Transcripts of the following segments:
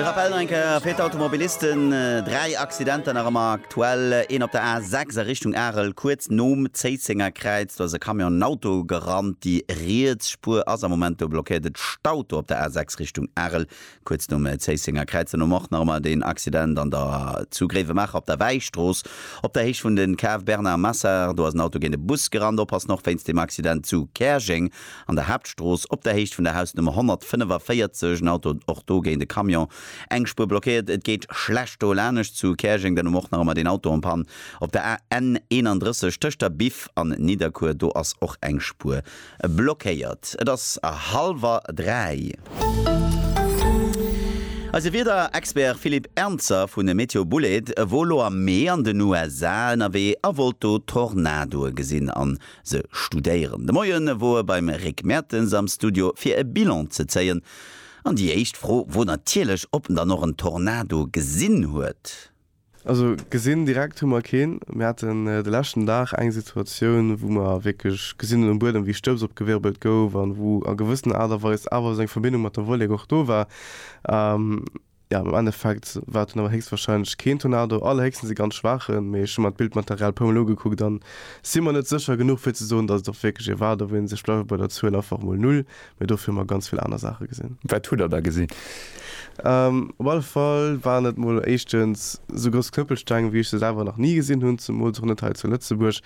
De Raphaël Renker fir d'Automobilisten. Dräi Accidenter nach ëmmer aktuell. Een op der A 6 a Richtung Arel, kuerz nom Zéisséngerkräiz. Do ass e Camion en Auto gerannt. Déi riets Spuer ass am Moment do blockéiert. Et staut do op der A 6 Richtung Arel, Kuerz nom Zéissenger Kräiz an um Mort nach emmer deen Accident an der zu Gréiwemaacher op der Wäistrooss op der Héicht vun de Cave Bernard Massard. Do ass en Auto géint e Bus gerannt. Oppassen och wéinst dem Accident zu Käerjeng an der Haaptstrooss op der Héicht vun der Hausnummer 145, en Auto och do géint e Camion, eng Spuer blockéiert. Et geet schlecht do. Lanescht zu Käerjeng dann um Mort nach emmer deen Auto en Panne op der AN 31 tëscht der Biff an Nidderkuer. Do ass och eng Spuer Blockéiert. Et ass hallwer dräi. Eise Wiederexpert Philippe Ernzer vun Meteo Bouled wor elo am Mee an den USA ënnerwee a wollt do Tornadoe gesinn an se studéieren. De Moie wor e beim Rick Mertens am Studio fir e Bilan ze zéien an déi éischt Fro wor natierlech, ob en dann och en Tornado gesinn huet. Also gesinn direkt hu mer keen. Mir haten de leschten Dag eng Situatioun, wou mer wierklech gesinn hunn um Buedem, wéi Stëbs opgewirbelt gouf an wou a gewëssen Aart a Weis awer esou eng Verbindung mat der Wollek och do war. Jo, am Endeffekt war et dunn awer héchstwahrscheinlech keen Tornado, allerhéchstens e ganz schwaachen. Mee ech hu mer d'Bildmaterial e puer mol ugekuckt an si mer net sécher genuch, fir ze soen, datt et och wierklech ee war. Do wéilt ee sech bleiwe bei der Zuel einfach emol Null, Mee dofir hu mer ganz vill aner Saache gesinn. Wat hutt Der da gesinn? Op alle Fall waren et mol éischtens esou grouss Knëppelsteng, wéi ech se selwer nach ni gesinn hunn, zemools och net hei zu Lëtzebuerg,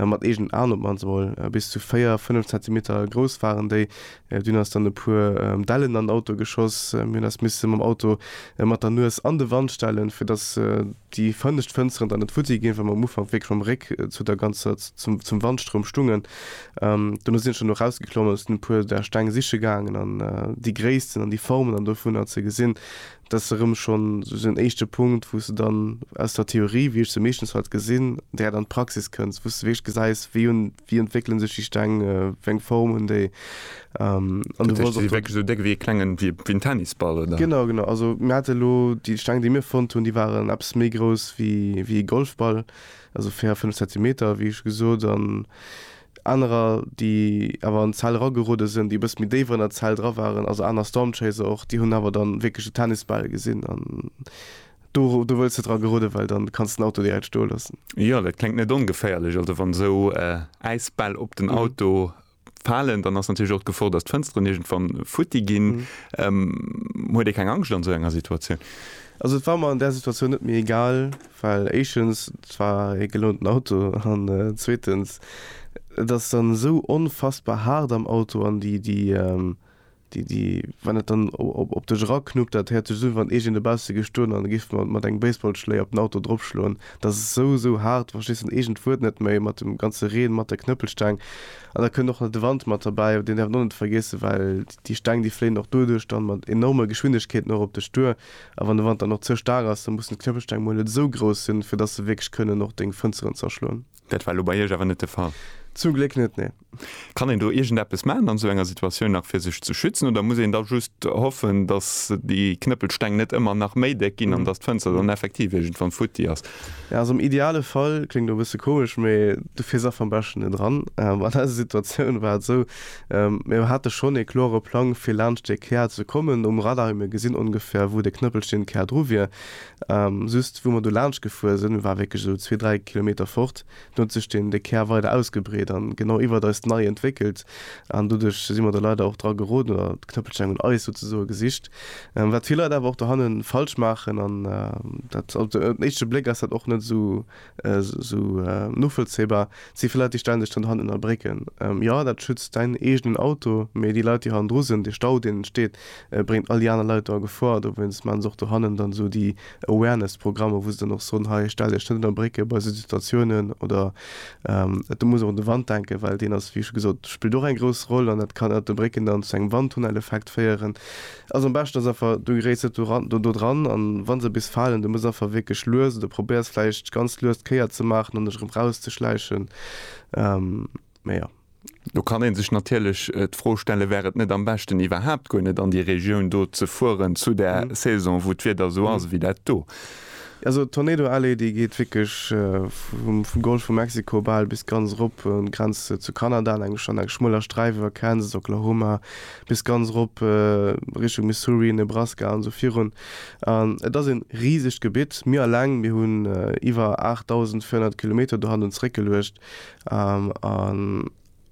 mat eegenen Aen op d'mannst emol. Bis zu véier, fënnef Zentimeter grouss waren déi. Dunn ass dann e puer Dellen an den Auto geschoss. Mir hunn eis misse mam Auto mat der Nues an de Wand stellen, fir datt déi fënnescht Fënsteren dann net futti ginn, well mer am Ufank wierklech mam Réck zu der ganzer, zum Wandstroum stungen. Dono sinn ech dann och rausgeklommen a sinn e puer där Steng siche gaangen an déi Gréissten an déi Formen an dovunner ze gesinn. Dat ass erëm schonn esou en éischte Punkt, wou s de dann aus der Theorie, wéi ech se meeschtens halt gesinn, direkt an d'Praxis kënns, wou s de wierklech gesäis, wéi hunn, wéi entwéckelen sech déi Steng, wéi eng Form hunn déi an. Déi si wierklech esou déck wéi e klengen, wéi en Tennisball, oder? Genau, genau. Also mir hate lo déi Steng, déi mir fonnt hunn, déi waren eppes méi grouss wéi e Golfball. also 4, 5 Zentimeter, wéi scho gesot, an anerer, déi awer an d'Zell eragerude sinn, déi e bësse méi déif an der Zell dra waren, also aner Stormchaser och, déi hunn awer da wierklech de Tennisbal gesinn an do wëlls de dra gerudden, well dann kanns de den Auto direkt stoe loossen. Jo, dat kléngt net ongeféierlech, also wann esou Äisbäll op den Auto falen, dann ass natierlech och d'Gefor, datt d'Fënsteren iergendwann futti ginn. Huet ee keng Angscht an esou enger Situatioun? Also et war mer an där Situatioun net méi egal, well éischtens, et war ee gelounten Auto an zweetens, et ass dann esou onfassbar haart am Auto an déi Wann et dann op dech eraknuppt, dat häert sech esou un, wann iergend e bausse géif stoen an e géif mat engem Baseballschléi op den Auto dropschloen. Dat ass esou, esou haart, du verstees dann iergend d'Wuert net méi, mat dem ganze Reen, mat der Knëppelsteng. An da kënnt och nach de Wand mat derbäi, deen däerf een och net vergiessen, well déi Steng, déi fléien och doduerch dann mat enorme Geschwindegkeeten och op dech duer. A wann de Wand dann och ze staark ass, da mussen d'Knëppelsteng mol net esou grouss sinn, fir dass se wierklech kënnen och deng Fënsteren zerschloen. Dat war elo bei Iech awer net de Fall. Zum Gléck net, nee. Kann een do iergendeppes maachen an esou enger Situatioun nach fir sech ze schützen oder muss een da just hoffen, datt déi Knëppelsteng net ëmmer nach méi déck ginn an datt d'Fënster dann effektiv iergendwann futti ass? Jo, also am ideale Fall, kléngt elo e bësse komesch, mee du fiers einfach am beschten net eran. An eiser Situatioun war et esou, mir hate schonn ee kloere Plang fir laanscht dee Kär ze kommen um Radar, mir hu gesinn ongefähr wou dee Knëppelsteng Kär dru wier, Just wou mer do laanscht gefuer sinn, war wierklech esou zwee, dräi Kilometer fort, do huet sech den de Kär weider ausgebreet an genau iwwert eis nei entwéckelt an doduerch si mer do leider och dra geroden oder d'Knëppelsteng un eis souzesoe gesicht, wat vill Leit awer och dohannen falsch maachen an dat op den éischte Bléck ass dat och net esou Esou novollzéibar si fir Leit déi stänneg dann hannen a Brécken. Jo dat schützt däin eegenen Auto, mee déi Leit déi hannendru sinn, de Stau deen entsteet bréngt all déi aner Leit do a Gefor. Dowéinst maachen se och do hannen dann esou déi Awareness Programmer, wou se dann och soen, hei stell dech net ënner Brécke bei esou Situatiounen oder et muss och un de Wand denken, well deen ass wéi scho gesot spillt och eng grouss Roll an dat kann ënnert de Brécken dann zu engem Wandtunneleffekt féieren. Also am beschten ass einfach du geréiss net do dran an wann se bis falen du muss einfach wierklech lues oder probéiers vläicht ganz lues d'Kéier ze maachen an dech erëm raus ze schläichen mee jo. Do kann een sech natierlech d'Fro stellen, wär et net am beschten iwwerhaapt guer net an déi Regioun do ze fueren zu der Saison wou d'Wieder esou ass ewéi dat do? Also Tornado Alley déi geet wierklech vum Golf vu Mexiko bal bis ganz erop un d'Grenz zu Kanada an engem schmueller Sträif iwwer Kansas, Oklahoma, bis ganz erop Richtung Missouri, Nebraska an esou virun. An et ass een risegt Gebitt. Mir alleng, mir hunn iwwer 8.400 Kilometer do hannen zréck geluecht. An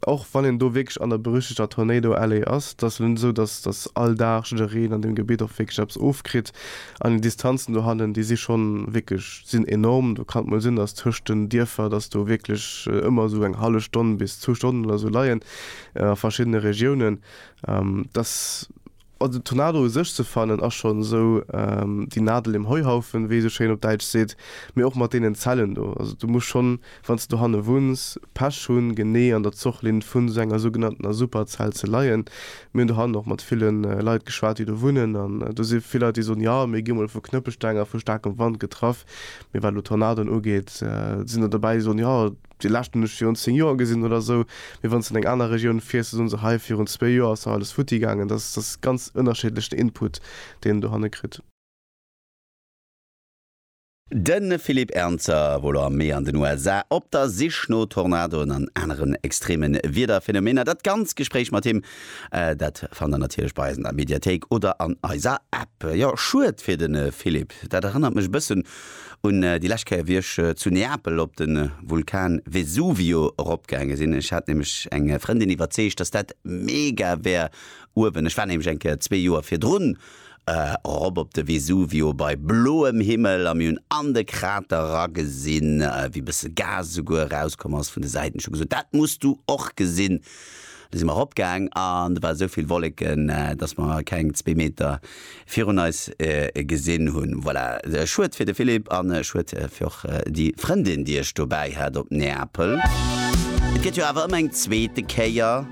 och wann een do wierklech an der berüchtegter Tornado Alley ass, et ass elo net esou, dass dass all Dag jiddereen an deem Gebitt och wierklech eppes ofkritt. An déi Distanzen do hannen, déi si schonn wierklech, sinn enorm. Do kann et mol sinn, dass tëscht den Dierfer, dass do wierklech ëmmer esou eng hallef Stonn bis zwou Stonnen oder esou leien. a verschiddene Regiounen, dass, also den Tornado u sech ze fannen ass schonn esou déi Nadel im Heuhaufen, wéi ee esou schéin op Däitsch seet, mee och mat deenen Zellen do. Also du muss schonn, wann s de dohanne wunns, Pech hunn, genee an der Zochlinn vun esou enger sougenanntener Superzell ze leien. Mir hunn dohannen och mat ville Leit geschwat, déi do wunnen, an do si vill Leit, déi soen, jo, mir gi mol vu Knëppelsteng a vu staarkem Wand getraff, mee wat elo Tornadoen ugeet, sinn der dobäi, déi soen, jo, Déi lescht hunn ech virun 10 Joer gesinn oder esou. Mee wann s de an eng aner Regioun fiers, da soen se, hei virun zwee Joer ass nach alles futti gaangen. Dat ass, dat ass ganz ënnerscheedlech den Input, deen en dohanne kritt. De Philippe Ernzer wor lo am Mee an den USA op der Sich no Tornadoen an aneren extreme Wiederphenomener. Dat ganz Gespréich mat him, dat fannt der natierlech bei eis an der Mediathéik oder an eiser App. Jo, schued fir de Philippe. Dat erënnert mech e bëssen Un déi lescht Kéier wéi ech zu Neapel op de Vulkan Vesuvio eropgaange sinn, ech hat nämlech eng Frëndin iwwerzeegt, dass dat mega wär uewen, ech war nämlech eng Kéier zwee Joer virdrun erop op de Vesuvio bei bloem Himmel a mir hunn an de Krater eragesinn, wéi bësse Gas esouguer erauskomm ass vun de Säiten, ech hu gesot, dat muss du och gesinn Du si mer eropgaang an et war esou vill Wolleken, dass mer keng zwee Meter virun eis gesinn hunn. Voilà, schued fir de Philippe an schued fir och déi Frëndin, déi ech dobäi hat op Neapel. Et gëtt jo awer ëmmer eng zweete Kéier.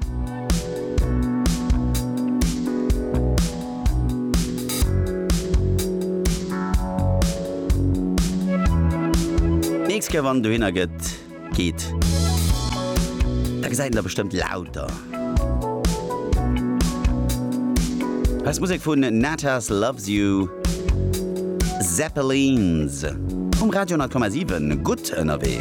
D'nächst Kéier, wann en dohinner gëtt. geet, da gesäit een der bestëmmt lauter. Hei ass Musek vun Natas Loves You, Zeppelins, um Radio 10,7 gutt ënnerwee.